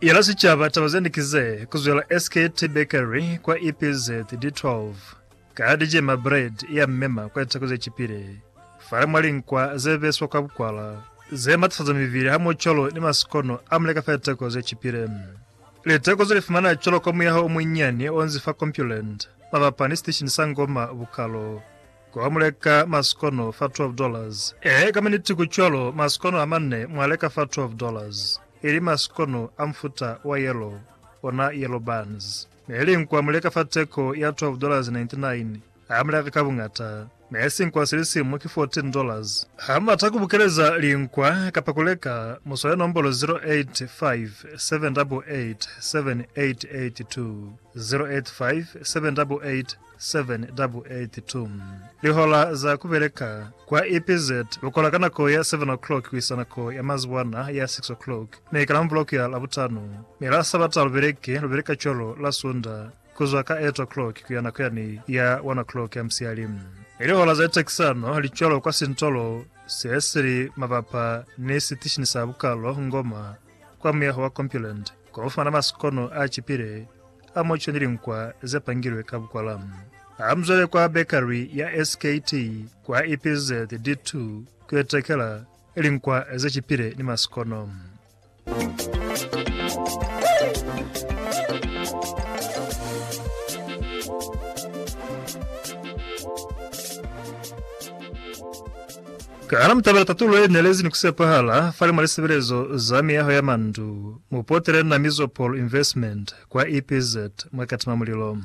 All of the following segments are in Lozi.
Yela sicaba taba zende kize, kuzwela SKT Bakery kwa EPZ D12 ka dijema bread ya mmema kwa litako zecipile, fale mwa linkwa zebeswa kwa bukwala, ze matafaza mibili hamoho cwalo ni masikono a muleka fa litako zecipile. Litako ze lifumana cwalo ka muyaho omunyinyani onzi fa Compuland, mabapa ni siteshini sa Ngoma Bukalo. Ku ha mu leka masikono fa twelve dollars. Ee, ka miniti ku cwalo, masikono a manne mwa leka fa twelve dollars, ili masikono a mufuta wa yellow, ona yellow buns. Ne li nkwa mu leka fa teko ya twelve dollars ninety nine, ha mu leka ka buñata. Ne sinkwa si li simu ki fourteen dollars. Ha mu bata ku bukeleza linkwa kapa ku leka, mu swale nombolo zero eight five seven double eight seven eight eight two, zero eight five seven double eight 7:82. Lihola za ku beleka kwa EPZ lu kola ka nako ya 7 o'clock ku isa nako ya mazibuana ya 6 o'clock, mi ka Lamuvula ku ya Labutano, mi la Sabata lu beleke, lu beleka cwalo la Sunda ku zwa ka 8 o'clock ku ya nako yani ya 1 o'clock ya musiyali. Mi lihola za litekisano li cwalo kwa sintolo se si li mabapa ni sitishini sa bukalo Ngoma, kwa muyaho wa Compuland. Kwa ku fumana masikono a cipile a muco ni linkwa ze pangilwe ka bukwala, ha mu zwele kwa bekari ya SKT kwa EPZ D2 ku yo tekela linkwa ze cipile ni masikono. Ka na mutabela tatulo ye nelezi ni kusepahala fali mwa lisebelezo za miyaho ya mandu. Mu potele na Mizopol Investment kwa EPZ mwa Katima Mulilo.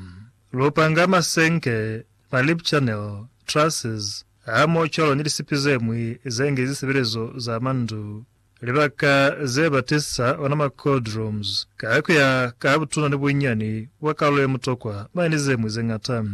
Lu panga masenke, ma lip channel, trusses, hamoho cwalo ni lisipi zemwi ze nge zisebelezo za mandu, libaka ze ba tesa ona ma cold rooms, ka kuya ka butuna ni bunyani bwa kalulo ye mutokwa mane ni zemwi ze ngata.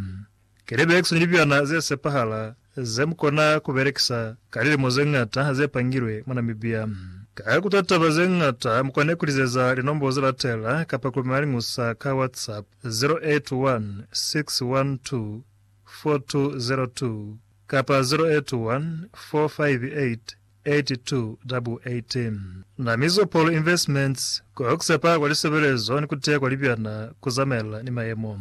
Kelebekso ni libyana ze sepahala zemukona kubelekisa ka lilimo zeñata zepangilwe mwa Namibia. Ka kuta taba zeñata, mukona kulizeza linombolo zelatela kapa kulumela liñusa ka WhatsApp, 0816124202 kapa 0814588288. Namizo Paul Investments, Kokusepa kwa lisebelezo ni kuteya kwa libyana kuzamaelana ni mayemo.